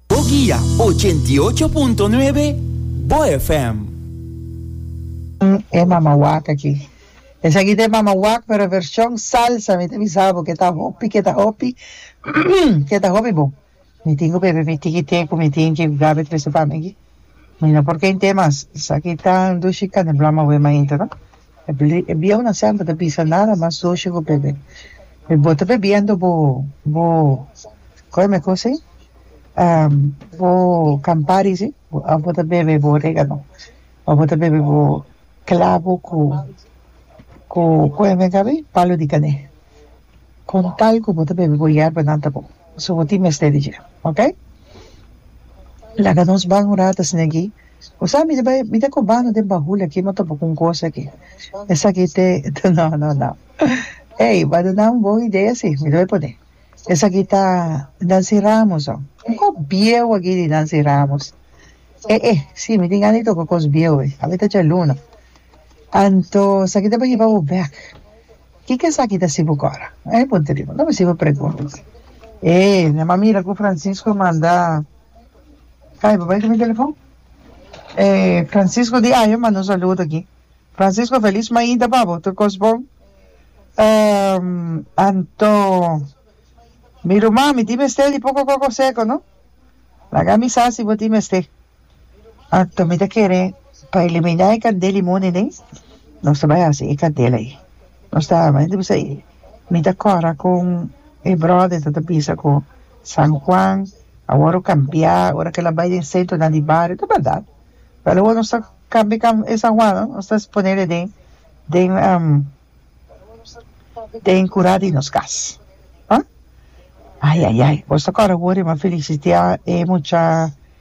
Bo guia ochenta i ocho punto nuebe Bo FM. E mamawak aki. Esaki ta e mamawak pero version salsa mi ta bisa bo ke ta hopi ke ta hopi ke ta hopi bon mi tin ku bebe mi tiki te ku mi tin ki ku Gaby trese pa mi aki mi no por kente mas esaki ta dushi kane blama wema inter no. E bieunan semper ta bisa nada mas doce cu bebe. Mi bo ta bebiendo bo bo coyo mi cosa ey? bo campari si, abo bo ta bebe bo oregano, abo bo ta bebe bo clavo cu cu coyo mi a caba ey? palo di cane. Con tal cu bo ta bebe bo yerba nan ta bon. So bo tin mester di dje. Ok. Laga nos ban un rato asina aki. Bo sa mi ta bay, mi ta cobando den bahul aki mi a topa cu un cosa aki. Esaki te, te no, no, no. Ey, bo a duna un bon idea si. Mi ta bay pone. Esaki ta Nancy Ramos oh. Un cos bieu aki di Nancy Ramos. Eh, eh, si, mi tin gana di toca cos bieu ey. Awe ta djaluna. Anto, esaki ta bay hiba bo bek. Kiko esaki ta sibu kora? E punto riba. No mi sibu pregunta. E nan a mira ku Francisco manda kai pa bai ku mi telefon. E Francisco di ayo manda un saludo aki. Francisco felis mainta pa bo. Tur kos bon. Anto mi ruman mi tin mester di poko koko seco no. Laga mi sa si bo tin mester. Anto mi ta kere pa eliminá e kandel i muni nei nos ta bai hasi e kandel ei nos ta arma hende bisai mi ta kòrda kon e bròda e ta ta bisa ku San Juan awor a kambiá ora ke el a bai den sentronan di bario ta bèrdat pero awor nos ta kambia e kam e San Juan no nos ta esponé den den den kurá di nos kas ah ayayay boso kòrda awor e ma felisitiá e mucha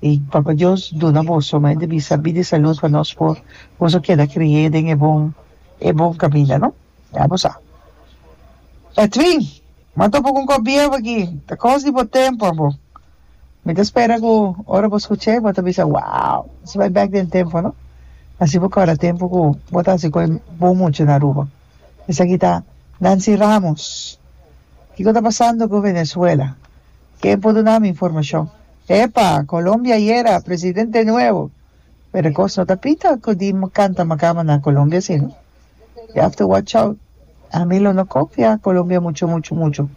I Papa Dios duna boso mas e debí sabí di salud pa nos por boso keda kri'é den e bon e bon kaminda no? Ya bo sa. Edwin, Mi a topa ku un kòp bieu aki, ta kos di bo tempu abo. Mi ta spera ku ora bo skuch'é bo ta bisa, Wow! Esei bai bèk den tempu no. Asina bo kòrda tempu ku bo ta hasi kos bon muchu na Aruba. Esaki ta Nancy Ramos. Kiko ta pasando ku Venezuela? Ken por duna mi informashon? Epa, Colombia ayera presidente nuevo! Pero e kos no ta pita ku di kanta makama na Colombia si no. You have to watch out. Ami lo no kofia Colombia muchu muchu muchu.